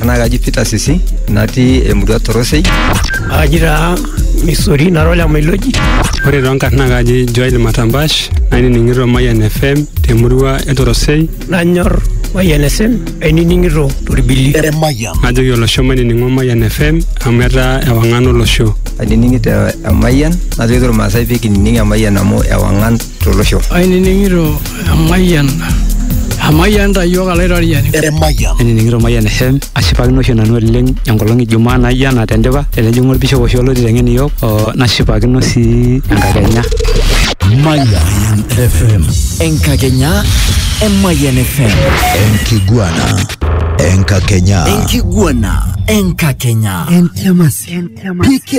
Ena kaji Peter Sisi natii emurua Torosei. Aji taa Missouri nara ole Mailoji. Ore too nkarn naa kaji Joel Matambash nainining'ito Mayian FM temurua e Torosei. Nanyor Mayian FM ainining'ito torbili. Eremayian. Najoki olosho mainining'o Mayian FM amu etaa ewang'an olosho. Ainining'ito Emayian najoki irmaasai pee kinining Emayian amu ewang'an tolosho. Ainining'ito emayian emayian ta iyiook alaitoriani. Emayian. Ainining'ito emayian FM ashipakino oshi nanu oleng enkolong e Jumaa naijo ena tendipa tenejing'u olbishop oshi olo aiteng'en iyiook o nashipakino sii enkakenya. Mayan FM. Enkakenya e Mayan FM. Enkiguana. Enkakenya. Enkiguana. Enkakenya. Entiamas. PK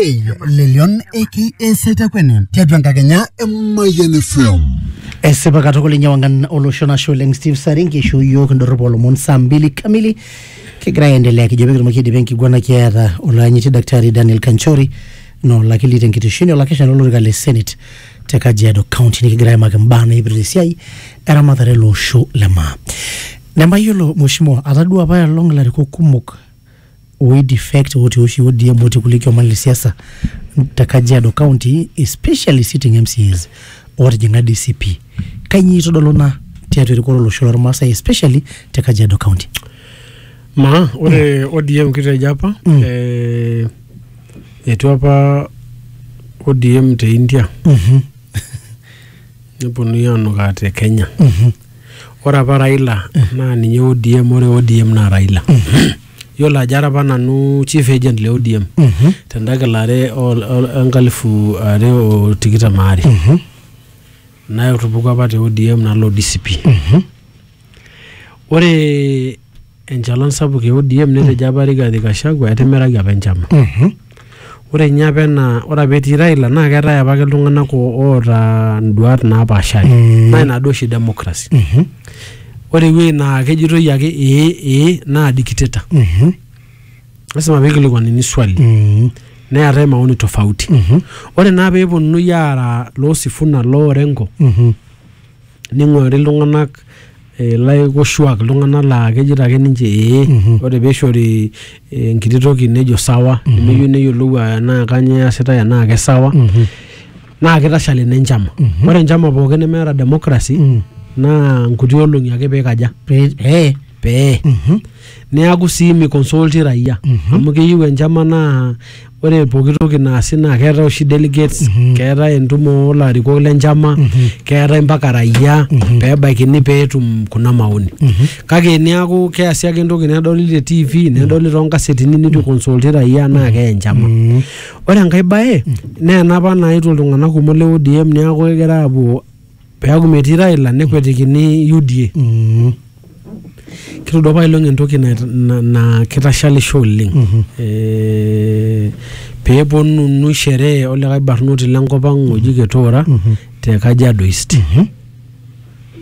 le Leon aka Saitakwene tiatua enkakenya e Mayian FM. Esipa katukul inye wangan olosho nashe oleng Steve Saringi isho iyiook indorrop oolomon saa mbili kamili kigira aendelea kijo pee kitumoki aidipa enkiguana kiata olaanyiti daktari Daniel Kanchori na olakili tenkitesheni olakeshani olorika le Senate te Kajiado County nikigira aimaki imbaa naipirta esiai eramatare ele osho le maa. Nemayiolo mheshimiwa atadua apaelong ilarikok kumok oidefect otii oshi ODM otii kulie kioman le siasa te Kajiado County especially sitting MCAs ootijing'a DCP. Kainyioo eitodolu ina tiatua erikore olosho lormaasai especially te Kajiado County. Maa ore ODM kitejo apa Mm. eh, etua apa ODM te India Mhm, neponunui anukaa te Kenya. mhm. ore apa Raila naa ninye ODM ore ODM naa Raila yiolo ajo ara apa nanu chief agent le ODM tenda kilare ol- ol- enkalifu are o tikitam aare natupukuo apa te ODM nalo DCP ore enchalan sapuk e ODM netejo apa Rigathi Gachagua etimiraki apa enchama. Ore ninye apa ena ore apa etii Raila naa keetae apake iltung'anak o- oota induat napaashari. Naa ina duo oshi democracy. Ore ewuei naa kejitoi ake ee ee naa dictator. Lasima peikilikuanini swali. Neetae maoni tofauti. Ore naa peeponunui aara loo Sifuna, loo Orengo, ning'urari iltung'anak eh, laikoshuak iltung'anak laa kejito ake ninche ee ore peishori eh, enkiti toki nejo sawa nemeyieu neyiolou ah, enaa kanyoo easitae enaa kesawa naa kitashal ina enchama ore enchama pookin nemeeta democracy naa nkuti olong'i ake peikaja pee eh, peye neaku sii miconsulti raia Mhm. amu keyieu enchama naa ore pooki toki naasi naa keetae oshi delegates Mhm. keetae entumo olarikok lenchama Mhm. keetae mpaka raia Mhm. pebaikini peetum kuna maoni Mhm. kake niaku keasi ake entoki nedoli te tv nedoli toonkasetini nitu iconsulti raia naa keye enchama Mhm. ore enkae bae naa enapa naetuo iltung'anak kumok le ODM neaku kegira aapuo Peaku metii Raila nekwetikini UDA. Mm. Kitodua apailong entoki naa kitashalisho oleng. Mm -hmm. E, peponunu sherehe olikae barnoti lenkop ang oji Ketoora mm -hmm. te Kajiado East. Mm -hmm.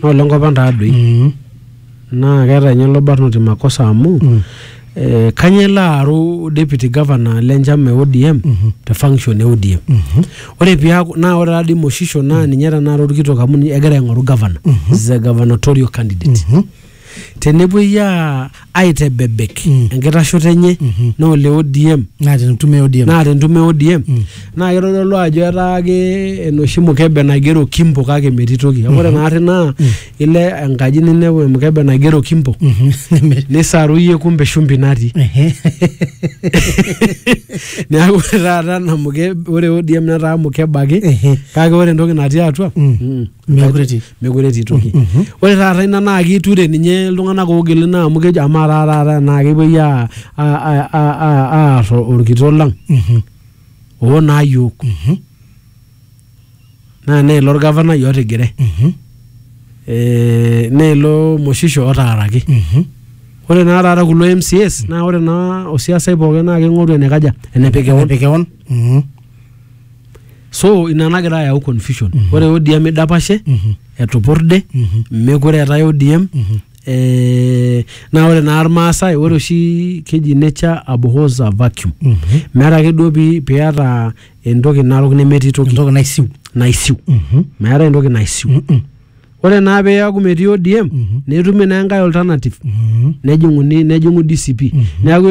Naa olenkop ang taadoi. Mm -hmm. Naa keeta ninye ilo barnoti makosa amu mm. eh, kanya elo aaru deputy governor le nchama e ODM mm -hmm. te function e ODM mm -hmm. ore piaku naa ore taadii Moshisho naa mhm. ninye tenakata orkitok amu egira aing'oru governor mm -hmm. is a gubernatorial candidate mm -hmm. tenepuoi aitebebek mm. enkitashoto enye mm -hmm. naa ole ODM naa tentume ODM naa tentume ODM mm. naa kitodolu ajo etaa ake enoshi mukebe naigero kimbo kake metii toki mm -hmm. ore mhm. naari naa mm. ile enkaji ninepu emukebe naigero kimbo nisaruyie kumbe shumbi natii Ehe. neeku ore taata ena mukebe ore ODM netaa mukebe ake Ehe. kake ore entoki natii atua Mm. mm, Meekure etii. meekure etii toki Mhm. ore taata ina naa kiture ninye iltung'anak oogili naa amu kejo amaa taa taata naa kepuoi aa- aa- aa- aa- aa- aar orkitok lang Mhm. oo naa yiok Mhm. naa neilo orgavanai otigire Mhm. eh, neilo moshisho otaaraki Mhm. ore naa taata kulo MCAs naa ore naa osiasai pookin naa king'oru enekaja enepik kewon Enepik kewon. Mhm. so ina nagira ayau confusion ore ODM idapashe Mhm. etupurde Mhm. mekure eetae ODM Mhm. eh, naa ore naa irmaasai ore oshi keji nature abhors a vacuum Mhm. meeta ake duo pi- piata entoki narok nemetii toki entoki naisiu naisiu Mhm. meetae entoki naisiu Mm-mm. ore naa peeku metii ODM netumi naa enkae alternative Mhm. nejing'uni nejing'u DCP neeku